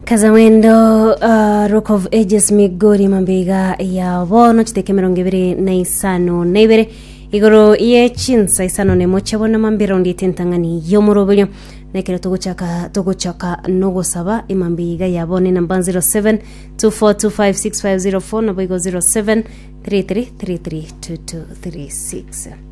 Kazawendo, uh, Rock of Ages Migori mambeiga ya bono chiteke mirongo ibere na isano na ibere igoro ye chinsa isano nemo chabona mambira ondi etentang'ani yomoroberio nekero togochaka togochaka nogosaba emambeiga ya bono enamba 07 24256504 naboigo 07 33332236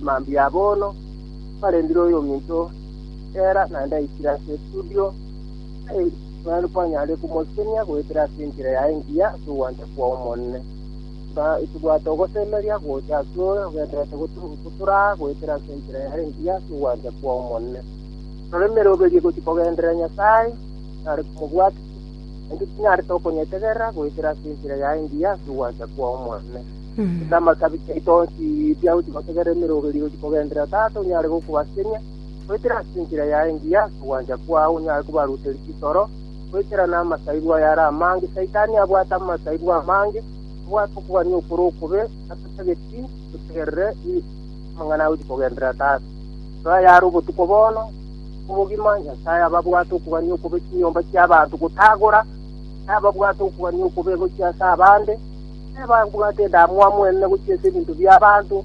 mambia bono barendire oyo ominto era naende aikire ase estudio naende kwanyare komosenia goetera ase enchera yaye engiya ase ogwancha kwa omonene tobwate ogosemeria gocha ase ore ogendererete gotoraa goetera ase enchera yaye engiya ase ogwancha kwa omonene ororeme roberie gochia kogenderera nyasaye nare komobwatia naende tinyarete okonyetegerera goetera ase enchera yaye engiya ase ogwancha kwa omonene Ase amatabi taito onsi biagochia gotegerera emerongo eria igochia kogenderera, Tata onyare gokobasenia, goetera ase enchera yaye engiya ase ogwancha kwao onyare kobaruteria chisoro, goetera namasaibu aye are amange, Saitani abwate amasaibu amange, obwate okogania okore okobe, natotageti totegerere i- amang'ana agochia kogenderera Tata. Rora aya are obotuko bono, obogima, Nyasaye ababwate okogania okobe chinyomba chiabanto gotagora, Nyasaye ababwate okogania okobe gochia ase abande, Nebabwate endamwamu enene gochia ase ebinto bi'abanto,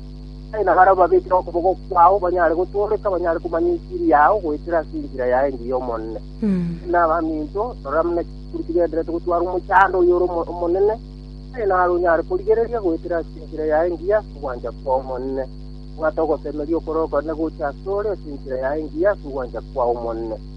aye nabare obabekere okoboko kwao banyare gotooreka, banyare komanya enchiri yao goetera ase enchera yaye engiya y'Omonene. Nabaminto, rora buna chikuri chigendererete gotwara omochando oyore omo- omonene, aye nare onyare korigereria goetera ase enchera yaye engiya ase ogwancha kw'Omonene. Bwata ogosemeria okorokoro nigo gocha asore ase enchera yaye engiya ase ogwancha kw'Omonene.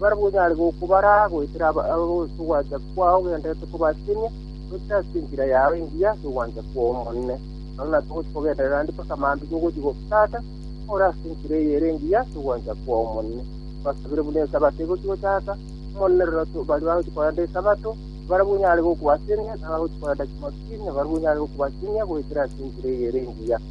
Barabwo onyare gokobara goetera ase ogwancha kwao ogenderete kobasenia, goetera ase enchera yao engiya ase ogwancha kw'Omonene. Nonya natogochia kogenderera ande mpaka mambia ogochia gotata, ore ase enchera eye ere engiya ase ogwancha kw'Omonene. Basabire buna Esabato egochia gotata, Omonene rora baria bagochia korenda Esabato, barabwo onyare gokobasenia, na abagochia korenda Chimosini, nabarabwo onyare gokobasenia goetera ase enchera eye ere engiya.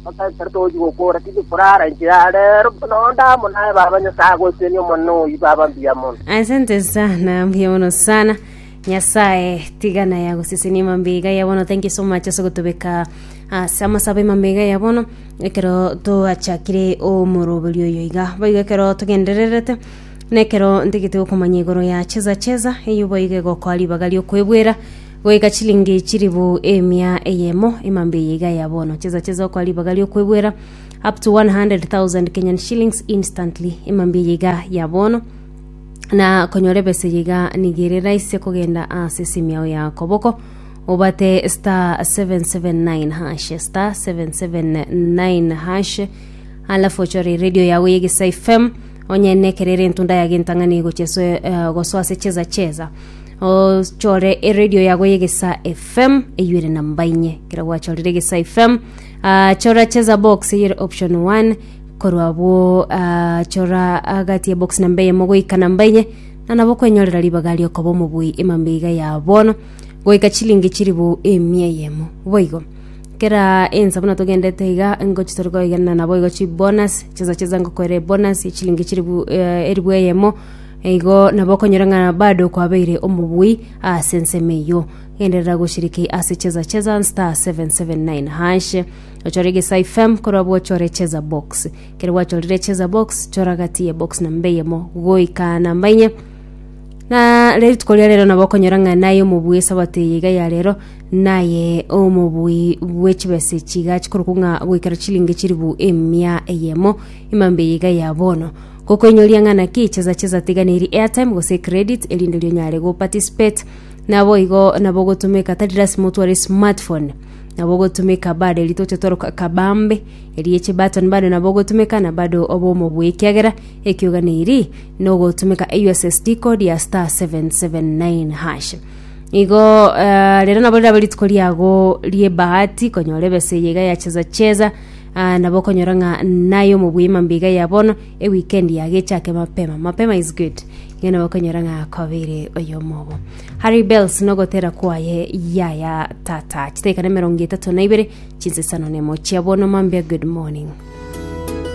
Mpaka ekero tochi gokora tindi korara inchera ya reero, buna onde amo naye Baba Nyasae agoetenie Omonene oyi baba mbuya mono. Asante sana, mbuya mono sana. Nyasaye tiga naye agosesenie mambega ya bono. Thank you so much ase gotobeka ase amasabe mambega ya bono ekero twachakire omoroberi oyo iga. Boigo ekero togendererete nekero ntigete gokomanya igoro ya cheza cheza eyo boigo egokoa ribaga riokoebwera Goika chilingi chilifu emia eyemo emambe eye iga ya bono. Chesa chesa okwa ribaga ri'okwebwera up to 100,000 Kenyan shillings instantly emambe eye iga ya bono na konyora ebesa eye iga niga ere raisi kogenda ase esimu yao ya koboko obate star 779 hash star 779 hash alafu ochore radio yago y'egesaifm Onye nekero ere entunda ya gentang'ani gochia ase eh, gosoa ase cheza cheza ochore eredio yago yegesa fm eyuere na mbainye kera gwachorire egesa fm ah, chora cheza box eyere option 1 korwa abwo ah, chora agati ya box namba eyemo goika namba enye na nabo kwenyorera ribaga riokoba omobui emambeiga ya bono goika chilingi chiribu emia eyemo boigo Kera ensa buna togendete iga ngochi tore koegenana naboigo chibonus chesa chesa ngokoera ebonus chilingi chiribu eh, eribu eyemo igo nabo okonyora ng'a bado kwabeire omobui ase ensemo eyio genderera goshiriki ase cheza cheza star 779 hash ochore egesa fm korwa bwochore cheza box kere gwachorire cheza box chora gati ye box namba eyemo goika namba inye na rituko ria rero nabo okonyora ng'a naye omobui esabato eye iga ya rero Naye omobui bwe chibese chiga chikorokwa ng'a goikera chilingi chilifu emia eyemo imambe eye iga ya bono gokoinyoria ng'a naki chesa chesa tiga neri airtime gose credit erinde ri onyare go participate nabo igo nabo gotumeka tari lasima otware smartphone nabo gotumeka bado eri toche toroka kabambe eri echi button bado nabo gotumeka na bado obe omobui ekiagera ekioga neri nogotumeka USSD code ya star 779 hash Igo eh, rero nabo rirabe rituko riago riebahati konyora ebesa eye iga yacheza cheza ah, nabo okonyora ng'a naye omobwima mbiga ya bono ewikendi yago echake mapema mapema is good iga nabo okonyora ng'a kobere oyomobo harry bells nogotera kwaye yaya tata chitaika na emerongo etato na ibere chinsesano nemo chia bono mambia good morning